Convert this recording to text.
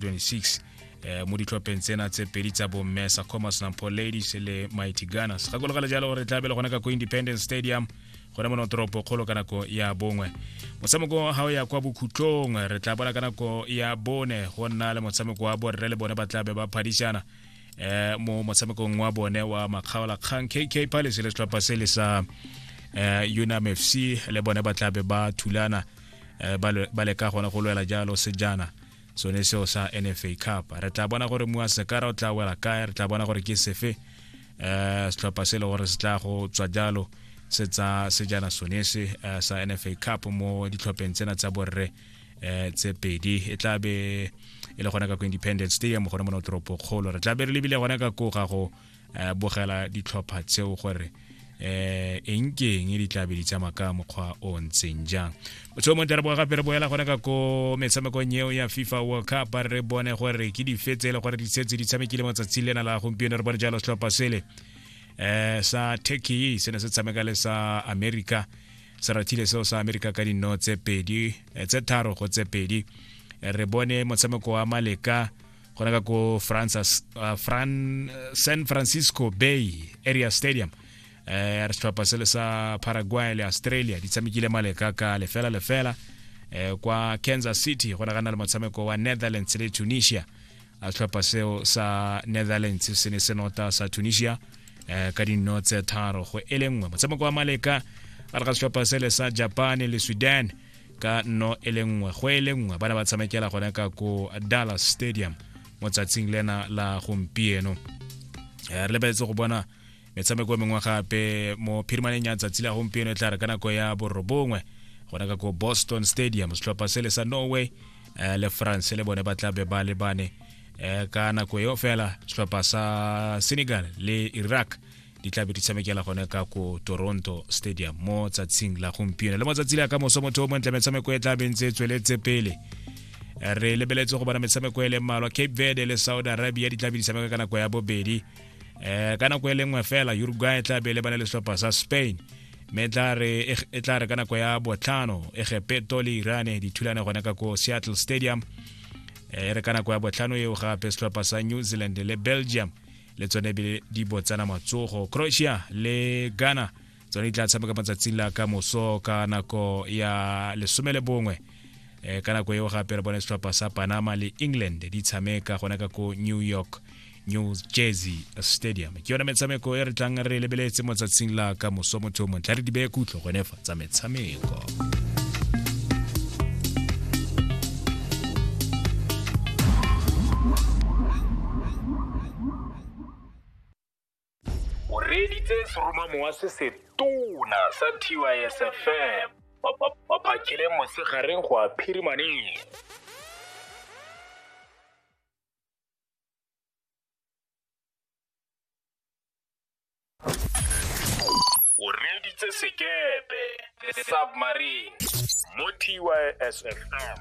26 eh, mo ditlhopheng tsena tse pedi tsa bomme sa commerce nampo ladies le mighty gunners gakologale jalo gore tla bele gone ka ko independence stadium gone mono toropo kgolo ka nako ya bongwe motshameko ga o ya kwa bokhutlong re tla bona ka nako ya bone go nna le motshameko wa borre le bone ba tla be ba phadisana eh, mo motshamekong wa bone wa makgaola kgang kk palace le setlhopha se le sa eh, unam fc le bone ba tla be ba thulana eh, ba le- ba leka gone go lwela jalo sejana sone seo sa nfa cup re tla bona gore mua sekara o tla wela kae re tla bona gore ke sefe um setlhopha se e le gore se tla go tswa jalo se tsa sejana sone se eh, sa nfa cup mo ditlhopheng tsena tsa borre um tse pedi e tla be e le gona ka ko independence stadium gone mo no toropo kgolo re tla be re lebile gona ka ko ga go eh, bogela ditlhopha tseo gore eh eng ke eng di tla be di tsamaya ka mokgwa o ntseng jang motho mo tera gape re boela gone ka ko metshamekong eo ya fifa world cup re bone gore ke dife tse e le gore di setse di tshamekile mo tsatsing lena la gompieno re bone jalo setlhopha sele eh sa turkey se ne se tshameka le sa america se rathile seo sa america ka dinno tse pedi eh, tse tharo go tse pedi re bone motshameko wa maleka gona ka ko francis uh, Fran, uh, san francisco bay area stadium eh re setlhopha se le sa paraguay le australia di tshamekile maleka ka lefela lefela eh kwa kansas city go ne ga na le motshameko wa netherlands le tunisia a setlhopha seo sa netherlands se ne se nota sa tunisia eh ka dinno tse tharo go e le nngwe motshameko wa maleka a re ga setlhopha se le sa japan le sweden ka no e le nngwe go e le nngwe ba ne ba tshamekela gone ka ko dallas stadium mo tsatsing lena la gompieno eh, re lebeletse go bona metshameko e mengwe gape mo phirimaneng ya tsatsi la gompieno e tla re ka nako ya borobongwe gona ka ko boston stadium setlhopha se le sa norway eh, le france le bone ba tla be ba lebane eh, ka nako eo fela setlhopha sa senegal le iraq di tla be di tshamekela gone ka ko toronto stadium mo tsatsing la gompieno le mo tsatsi le ya ka moso motho o montle metshameko e tla bentse e tsweletse pele re lebeletse go bona metshameko e le mmalwa cape verde le saudi arabia di tla be di tshameka ka nako ya bobedi um ka nako e le nngwe fela uruguay e tla be le bane le setlhopha sa spain mme e, e tla re ka nako ya botlhano egepeto le irane di thulane gone ka ko seattle stadium e re ka nako ya botlhano eo gape setlhopha sa new zealand le belgium le tsone ebile di botsana matsogo croatia le ghana tsone di tla tshameka matsatsing la ka moso ka nako ya lesome le bongwe um ka nako eo gape re bone setlhopha sa panama le england di tshameka gona ka ko new york new jersey stadium ke yone metshameko e re tlang re lebeletse motsatsing la ka moso motho montle re di beye kutlho gone fa tsa metshameko o reeditse seromamowa se se tona sa tysfm ba phakile mosegareng go a phirimaneng o reeditse sekepe submarine mo tysfm